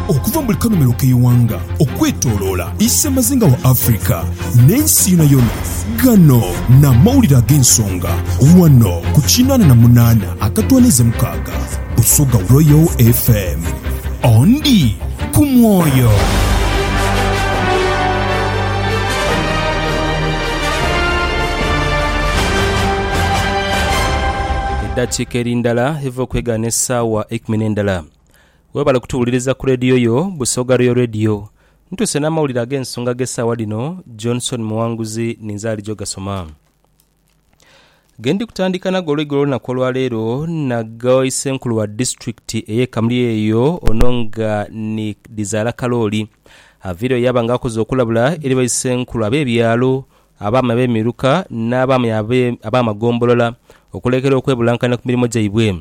Okuva mu buli kanomero k'eighanga okwetoloola isemazinga wa Africa n'ensi yonayona, gano n'amawulire ag'ensonga wano ku kinaana na munaana akatwaniiza mukaaga Busoga Royal FM. Ondi ku mwoyo. Eddakiika eri ndala eva okwegaana Saawa eikumi n'endala. Webale kutuwuliriza ku leediyo yo Busoga Royal Radio. Ntuuse n'amawulire ag'ensonga ag'esaawa dhino, Johnson Muwanguzi ninze ali jogasoma. Gendi kutandika nago olweigo olw'olunaku olwaleero nago isenkulu wa disitulikiti ey'e Kamuli eyo ono nga ni Dhizaala Kalooli. Aveereyo yaaba nga akoze okulabula eri baisenkulu ab'ebyalo abaami ab'emiruka n'abaami ab'amagombolola okulekera okwebulankanya ku mirimo gyaibwe.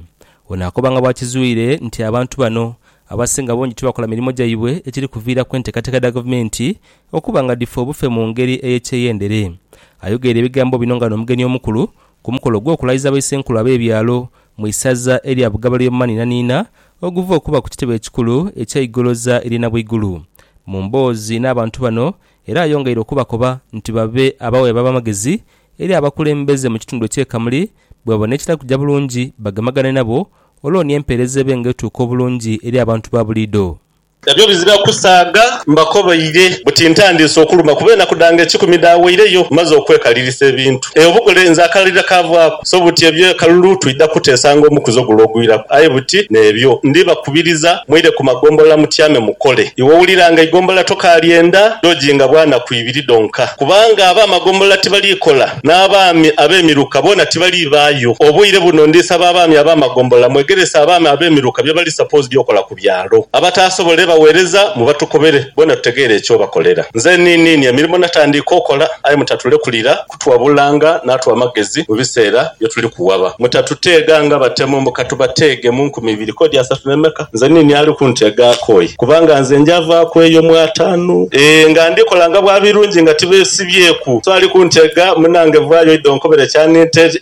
Ono akobanga bwakizwire nti abantu bano abasinga bungi tibakola mirimo gyaibwe ekiri kuviiraku enteekateeka dha gavumenti okuba nga dhifa obufe mu ngeri ey'ekyeyendere. Ayogeire ebigambo bino nga n'omugenyi omukulu ku mukolo gw'okulayiza Baisenkulu ab'ebyalo mu isaza erya Bugabale ly'omu maniinaniina oguva okuba ku kitebe ekikulu ekya Igoloza ery'e Nabwaigulu. Mu mboozi n'abantu bano Era ayongeire okubakoba nti babe abawe ab'amagezi eri abakulembeze mu kitundu eky'e Kamuli bwebabona ekitali kuja bulungi bagemagane nabo olwo ni empeereza ebe nga etuuka obulungi eri abantu ba buliido. Nabyo bizira kusaaga. Mbakobaire buti ntandiise okuluma kuba enaku dhange ekikumi dhaaweireyo mmaze okwekaliirisa ebintu. Eyo bukole nze akalira kaavaaku. So buti ebyo ekalulu twidha kuteesanga omukuzo gule ogwiraku, aye buti n'ebyo ndibakubiriza, mwire ku magombolola mutyame mukole. Iwe wulira nga eigombolola tokaalyenda lyojinga bwanaku ibiri dhonka, kubanga ab'amagombolola tibaliikola, n'abaami ab'emiruka boona tibaliibaayo. Obwire buno ndisaba abaami ab'amagombolola mwegerese abaami ab'emiruka bye bali supposed okola ku byalo. Abataasobole baweereza mubatukobere, boona tutegeere eky'obakolera. Nze niiniini emirimo natandiika okola, aye mutatulekulira. kutwabulanga n'atuwa amagezi mu biseera bye tuli kuwaba. Mutatuteega nga batemu mbu ka tubateege mu nkumi ibiri k'odi asatu n'emeka. Nze niini ali kunteega akooye? Kubanga nze njavaaku eyo mu ataanu, ee, nga ndi kola nga bwa birungi nga tibeesibyeku. So ali kunteega, munaange vaayo oidhe onkobere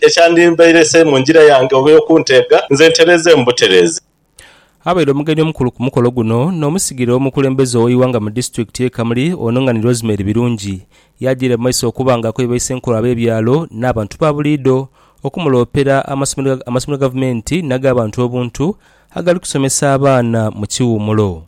ekyandimbeire se mu njira yange oba ey'okunteega, nze ntereeze mu butereeze. Abaire omugenyi omukulu ku mukolo guno n'omusigire w'omukulembeze ow'eighanga mu disitulikiti ye Kamuli ono nga ni Rosemary Birungi yajiire mu maiso okuba nga akoye baisenkulu ab'ebyalo n'abantu ba buliidho okumuloopera amasomero amasomero gavumenti n'ag'abantu obuntu agali kusomesa abaana mu kiwumulo.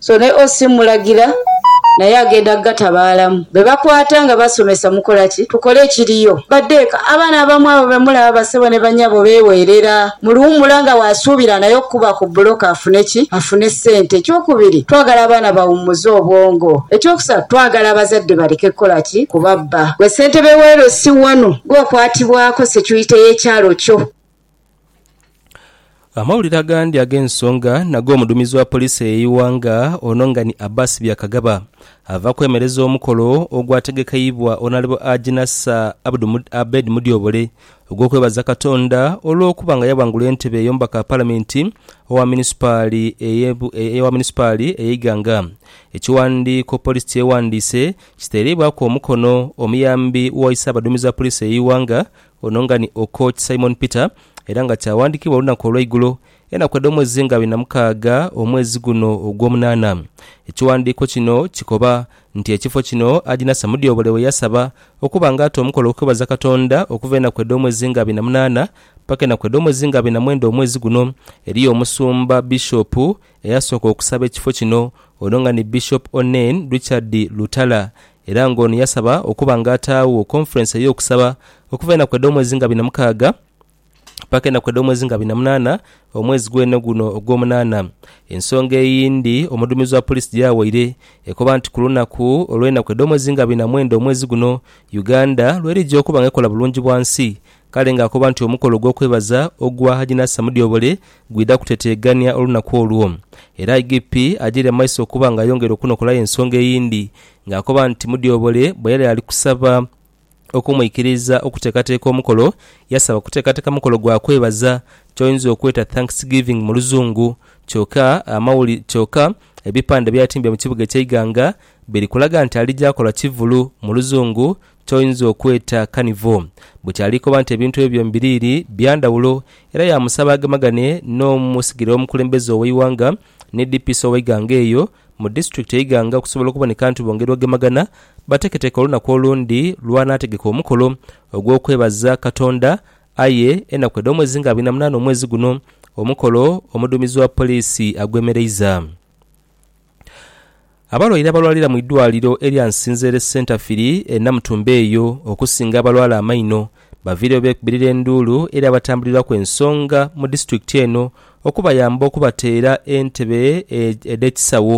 So ne OC mmulagira naye agenda kugatabaalamu. Be bakwata nga basomesa mukola ki? Tukole ekiriyo. Badde eka. Abaana abamu abo be mulaba bassebo ne bannyabo beeweerera mu luwummula nga bw'asuubira naye okukuba ku bbulooka afune ki? Afune ssente. Ekyokubiri, twagala abaana bawummuze obwongo. Ekyokusatu, twagala abazadde baleke kukola ki? Kubabba. Ggwe ssentebe w'e LC wano, ggwe okwatibwako securite y'ekyalo kyo. Amawulire agandi ag'ensonga nago omuduumizi wa poliisi ey'eighanga ono nga ni Abbas Byakagaba ava kwemereza omukolo ogwategekeibwa Onalebo Haji Nasser Abed Mudyobole ogw'okwebaza Katonda olw'okuba nga yaghangula entebe y'omubaka wa palamenti owa munisipaali eye Iganga. Ekiwandiiko poliisi kyeghandiise kitereibwaku omukono omuyambi wa ise abaduumizi ba poliisi ey'eighanga Ono nga ni Okoch Simon Peter era nga kyawandikibwa olunaku olweigulo enaku edhomwezi nga abiri na mukaaga omwezi guno ogwomunana. Ekiwandiiko kino kikoba nti ekifo kino Haji Nasser Mudyobole weyasaba okuba nga ata omukolo okwebaza Katonda okuva enaku edhomwezi nga abiri na munana paka enaku edhomwezi nga abiri na mwenda omwezi guno. Eriyo omusumba, Bishop, eyasooka okusaba ekifo kino ono nga ni Bishop Onen Richard Lutala Era nga ono yasaba okuba nga ataagho Conference ey'okusaba okuva enaku edh'omwezi nga bina mukaaga paka enaku edh'omwezi nga bina munaana omwezi gwene guno ogw'omunaana. Ensonga eyindi omuduumizi wa Police gyawaire ekoba nti ku lunaku olw'enaku edh'omwezi nga bina mwenda omwezi guno Uganda lwerija okuba nga ekola bulungi bwansi kale nga akoba nti omukolo ogw'okwebaza ogwa Haji Nasser Mudyobole gwidha kuteteegania olunaku olwo. Era IGP agyeire amaiso okuba nga ayongera okunokolayo ensonga eyindi ng'akoba nti Mudyobole bwe yali ali kusaba okumwikiriza okuteekateeka omukolo, yasaba kuteekateeka mukolo gwa kwebaza ky'oyinza okweta Thanksgiving mu Luzungu kyoka amawuli kyoka ebipande by'atimbye mu kibuga eky'e Iganga biri kulaga nti alija kola kivulu mu Luzungu ky'oyinza okweta kanivo. Buti ali koba nti ebintu ebyo byombiriri bya ndhawulo era yaamusaba agemagane n'omusigire w'omukulembeze ow'eighanga ni DPC ow'eighanga eyo mu disitulikiti e Iganga okusobola okuboneka nti bongera ogemagana bateketeke olunaku olundi lw'anaategeka omukolo ogw'okwebaza Katonda aye enaku edh'omwezi nga abiri na munaana omwezi guno, omukolo omuduumizi wa poliisi agwemereiza. Abalwaire abalwalira mu idwaliro erya Nsinzere Centerfiri e Namutumba eyo okusinga abalwala amaino baviireyo beekubirira enduulu eri abatambulirwaku ensonga mu disitulikiti eno okubayamba okubateera entebe edh'ekisawo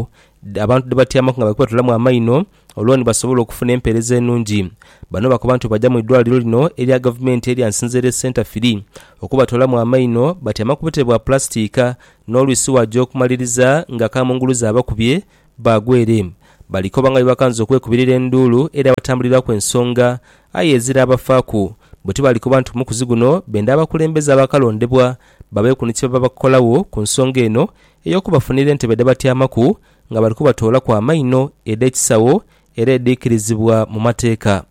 abantu dhebatyamaku nga bali kubatolamu amaino olwo ni basobola okufuna empeereza enungi. Bano bakoba nti bwebaja mu idwaliro lino erya gavumenti erya Nsinzere Centre Firi okubatoolamu amaino batyama ku butebe bwa pulasitiika n'olwisi waja okumaliriza nga kamunguluze abakubye baagwa ere. Balikoba nga bwebakanza okwekubirira enduulu eri abatambuliraku ensonga aye eziraabafaaku bwe tibalikoba nti omukuzi guno benda abakulembeze abaakalondebwa babeeku ni kyebabakola ku nsonga eno ey'okubafunira entebe dhebatyamaku nga bali kubatoolaku amaino edh'ekisagho era edhiikirizibwa mu mateeka.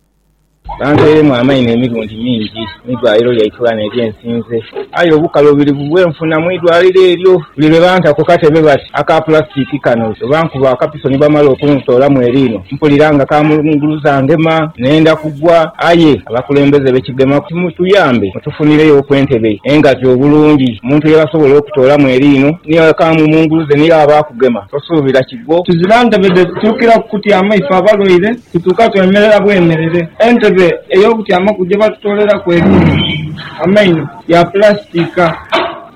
Bantoiremu amaino emirundi mingi mu idwaliro lya Iturana erye nsinze, aye obukaluubirivu bwe nfuna mu idwaliro eryo buli lwe banta ku katebe bati aka pulasitiki kano bwe bankuba akapiso ni bamala okuntoolamu eriino mpulira nga kamulunguluza ngema nenda kugwa aye abakulembeze be Kigema mutuyambe Tufunireyo ku entebe engazi obulungi omuntu yebasobola okutoolamu eriino ni ghekaamu mu ngulu ze ni yaaba akugema tosuubira kigwo. Tuzira ntebe dhe tutuukira kukutyama ife abalwaire, tutuuka twemerera bwemerere. Entebe ey'okutyamaku gye batutooleraku eriino, amaino, ya pulasitiika.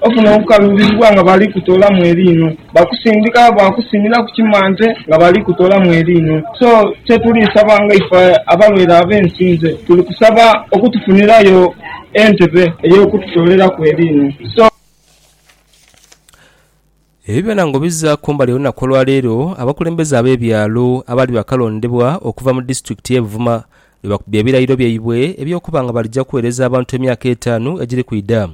Ofuna okukaluubirirwa nga bali kutoolamu eriino. Bakusindika bwakusimira ku kimante nga bali kutolamu eriinho. So kyetuli saba nga ife abalwaire abensinze tuli kusaba okutufunirayo entebe eyokututoleraku eriinho. So. Ebyo byona ngo biza kumbali olunaku olwaleero abakulembeze abebyalo abaali bakalondebwa okuva mu disitulikiti ye Buvuma lwe bakubye ebirayiro byaibwe eby'okuba nga balija kuweereza abantu emyaka etaanu egiri kwidha.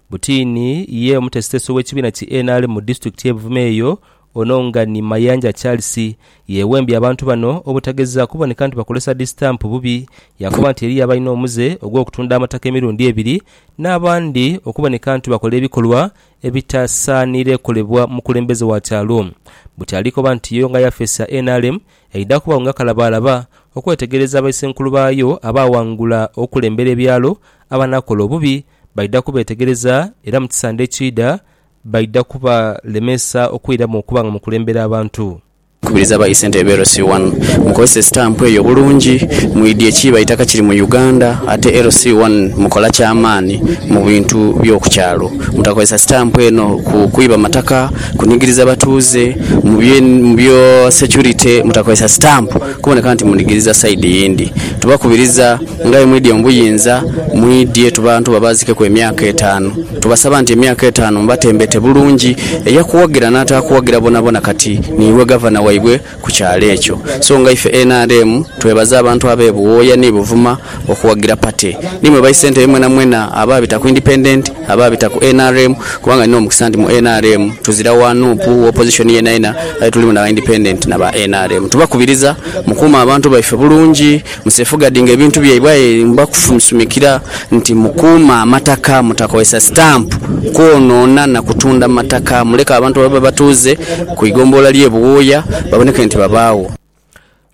Butiini ye omutesitesi ow'ekibiina ki nrm mu disitulikiti y'e Buvuma eyo, ono nga ni Mayanja Charles, yeewembye abantu bano obutageza kuboneka nti bakozesa disitampu bubi, yaakoba nti eriyo abalina omuze ogw'okutunda amataka emirundi ebiri n'abandi okuboneka nti bakola ebikolwa ebitasaaniire kolebwa mukulembeze wa kyalo. Buti ali koba nti yo nga yafeesi ya nrm Eidha kubagho nga kalabaalaba okwetegereza baisenkulu baayo abaaghangula okulembera ebyalo. Abanakola obubi baidha kubeetegereza, era mu kisande ekiidha baidha kubalemesa okwiramu okuba nga mukulembera abantu. Kubiriza ba Isente e LC One mukozese sitampu eyo bulungi, mwidhie ekiiba eitaka kiri mu Uganda ate LC One mukola kyamaani mu bintu by'oku kyalo. Mutakozesa sitampu eno kwiba mataka. Kunigiriza batuuze mu byo securite mutakozesa stamp kuboneka nti munigiriza side yindi. Tubakubiriza ngaye mwidye mu buyinza mwidye tubantu babazikeku emyaka etaanu. Tubasaba nti emyaka etaanu mubatembete bulungi eyakuwagira natakuwagira bonabona kati niiwe Gavana waibwe. ku kyalo ekyo. So nga ife nrm twebaza abantu abe Buwooya ni Buvuma okuwagira party. Ni mwe bai Ssentebe mwenamwena abaabita ku Independent, abaabita ku nrm kubanga nina omukisa nti mu nrm tuzira wa nup, wa opposition yenayena aye tulimu na ba Independent na ba nrm. Tubakubiriza mukuume abantu baife bulungi. Mu Sefugadi nga ebintu byaibwe aye mbakufumsumikira nti mukuume amataka, mutakozesa sitampu kwonoona na kutunda mataka, muleke abantu ababe abatuuze ku igombolola ly'e Buwooya baboneke nti babaagho.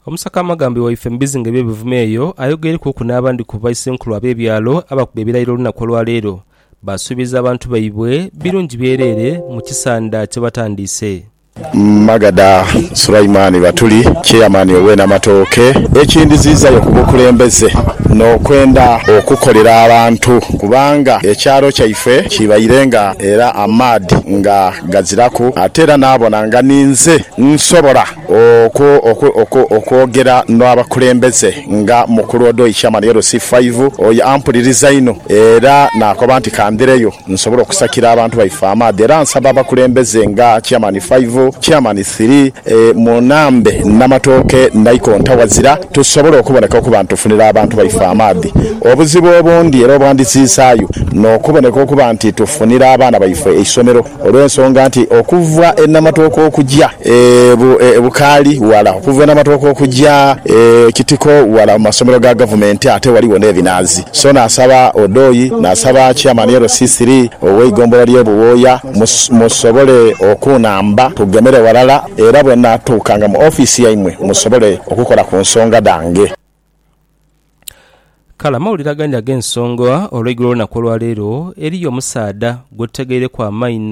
Omusaka Amagambi waife mu bizinga eby'e Buvuma eyo ayogeirwkuku n'abandi ku baisenkulu ab'ebyalo abakuba ebirayiro olunaku olwa leero, baasuubiza abantu baibwe birungi byereere mu kisanda kye batandiise. Magada Sulaiman Batuli, Chairman owe Namatooke, ekindhiziizayo ku bukulembeze n'okwenda okukolera abantu kubanga ekyalo kyaife kibaire nga era amaadhi nga gaziraku ate era naabona nga ninze nsobola okwogera n'abakulembeze nga mukulu Odoi Chairman LC5 oyo ampuliriza inho era naakoba nti kandhireyo. Nsobola okusakira abantu baife amaadhi era nsaba abakulembeze nga Chairman Five, Chairman Three, Munambe, Namatooke, Naikonta, Wazira tusobole okuboneka okuba nti tufunira abantu baife amaadhi. Obuzibu obundi era obwandisiisaayu n'okuboneka okuba nti tufunira abaana baife eisomero olw'ensonga nti okuva e Namatooke okuja e Bukaali ghala, okuva e Namatooke okuja e Kitiko ghala mu masomero ga Gavumenti ate ghaligho n'ebinaazi. So naasaba Odoi, naasaba Chairman LCC ow'eigombolola ly'e Buwooya musobole okunhamba tugemere ghalala era bwe naatuukanga mu ofiisi yaimwe musobole okukola ku nsonga dhange. Kale amawulire agandi ag'ensonga olweigulo olw'enaku olwaleero, eriyo omusaadha gwetutegeireku amaina,